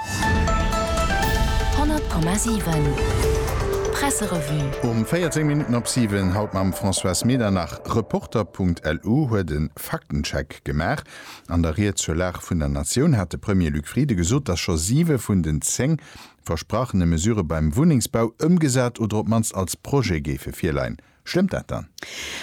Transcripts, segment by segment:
100,7 Presserevue. Um 14 Minutten op 7, haut mam Françoise Medernach. Reporter.lu huet e Faktencheck gemaach. An der Ried zur Lag vun der Natioun hat de Premier Luc Frieden gesot, datt scho siwe vun den zéng versprachene Mesurë beim Wunnengsbau ëmgesat oder op d'mannst als Projet géife virleien. Stëmmt dat dann?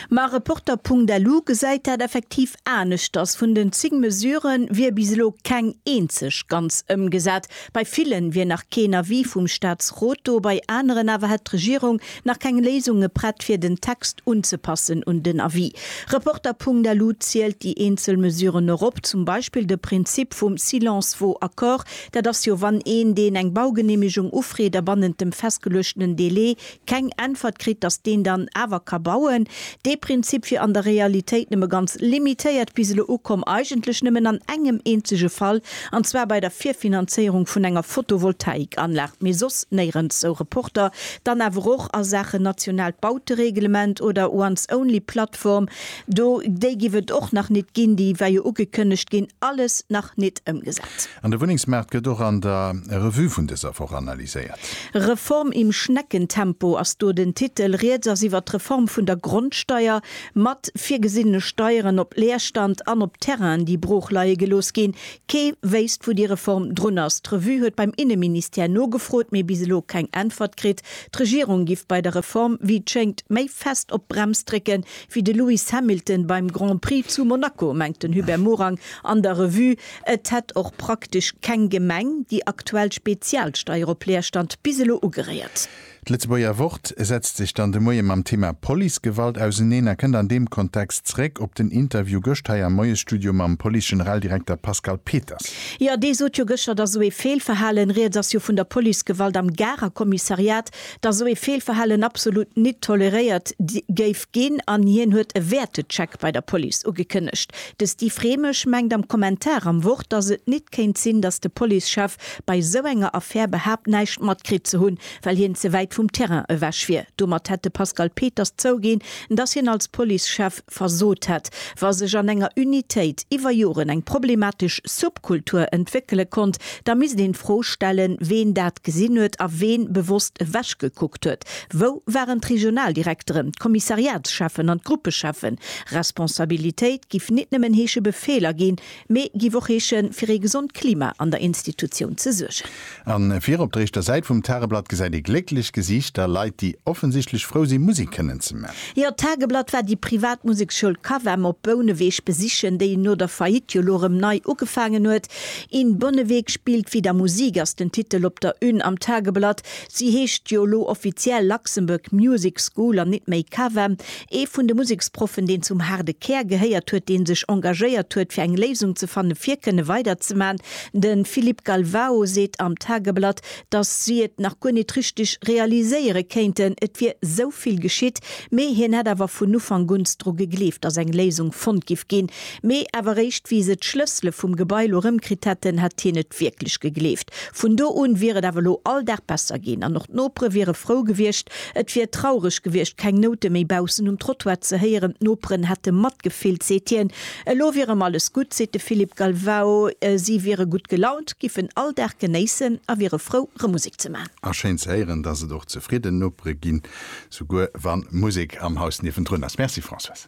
Ma Reporter.lu gesäit dat effektiv aneschters. Vun den 10 Mesure wier bis elo keng eenzeg ganz ëmgesat. Bei ville wier nach keen Avis vum Staatsrot do, bei aneren awer hätt d'Regierung nach keng Léisunge prett fir den Text unzepassen un den Avis. Reporter.lu zielt déi eenzel Mesuren och op, zum Beispill de Prinzip vum Silence vaut accord. Dat ass jo, wann een, deen eng Baugeneemegung ufreet a bannent dem festgeluechtenen Delai keng Äntwert kritt, datt deen dann awer ka bauen. Dee Prinzip wier an der Realitéit nëmme ganz limitéiert bis elo ukomm, eigentlech nëmmen an engem eenzege Fall, an zwar bei der Virfinanzéierung vun enger Photovoltaikanlag, mee soss néirens, sou Reporter. Dann awer och a Saachen nationaalt Bautereglement oder Once-Only-Plattform, do, déi giff et och nach nit ginn, déi war jo ugekënnegt ginn, alles nach nit ëmgesat. An de Wunnengsmaart gëtt och an der Revue vun dëser Woch analyséiert. Reform im Schneckentempo ass do den Titel. Rieds ass iwwert d'Reform vun der Grondsteier, mat virgesinnene Steieren op Leerstand an op Terrainen, déi brooch leie gelooss ginn. Kee wéisst, wou déi Reform drun ass. D'Revue huet beim Inneministère nogefrot, mee bis elo keng Äntwert kritt. D'Regierung giff bei der Reform, wéi et schéngt, méi fest op d'Brems drécken, wéi de Lewis Hamilton beim Grand Prix zu Monaco, mengt den Hubert Morang an der Revue. Et hätt och praktesch keng Gemeng déi aktuell Spezialsteier op Leerstand bis elo ugeréiert. D'Lëtzebuerger Wort setzt sech dann de Moie mam Thema Policegewalt auseneen a kënnt an deem Kontext zréck op den Interview gëscht hei am Moiesstudio mam Police-Generaldirekter Pascal Peters. Jo, dee sot jo gëschter, datt esou ee Feelverhalen, rieds ass jo vun der Policegewalt am Garer Kommissariat, datt esou ee Feelverhalen absolut nit toleréiert géif Ginn an hien huet e Wäertecheck bei der Police ugekënnegt. De Steve Remesch mengt am Kommentar am Wort, datt et nit kéint sinn, datt de Policechef bei esou enger Affär behaapt näischt matkritt ze hunn, well hien ze wäit vum Terrain ewech wier. Domat hätt de Pascal Peters zouginn, datt hien als Policechef versot hätt. Wa sech an enger Unitéit iwwer Joren eng problematesch Subkultur entwéckele konnt, da misst een d'Fro stellen, ween dat gesinn huet a ween bewosst ewechgekuckt huet, Wou waren d'Regionaldirekteren, d'Kommissariatscheffen an d'Gruppecheffen? Responsabilitéit giff nit nëmmen heesche Befeeler ginn, mee giff och heeschen fir ee gesond Klima an der Institutioun ze suergen. An vir op der éischter Säit vum Tageblatt gesäit ee glécklech Gesiichter, Leit déi offensichtlech frou sinn Musik kënnen ze man. Jo, d'Tageblatt war déi privat Museksschoul Cavem op Bouneweg besichen, déi no der Faillite jo lo rëm nei ugefaangen huet. In Bonneweg spielt wieder Musik ass den Titel op der Une am Tageblatt. Si heescht jo elo offiziell Luxembourg Music School an nit méi CAVEM. Ee vun de Museksproffen, deen zum haarde Kär gehéiert huet, dee sech engagéiert huet fir eng Léisung ze fanne fir kënne weiderzeman. De Philippe Galvao seet am Tageblatt, datt si et nach guer nit richteg realiséiere kéinten, et wier sou vill geschitt, mee hien hätt awer vun Ufank un s dru gegleeft, datt eng Léisung fonnt giff ginn. Mee awer réischt wéi se d'Schlëssele vum Gebai lo rëmkritt hätten, hätt hien et wierklech gegleeft. Vun do un wier et awer lo all Dag besser ginn an och d'Nopere wiere frou gewiescht. Et wier traureg gewiescht, keng Noute méi baussen um Trottoir ze héieren. D'Noperen hätte matgefillt, seet hien. Elo wier erëm alles gutt, seet de Philippe Galvao. Si wiere gutt gelaunt, giffen all Dag genéissen a wiere frou, rëm Musek ze man. A schéin ze héieren, datt et och zefridden Nopere ginn, souguer wann Musek am Haus niewendrun ass. Merci Françoise.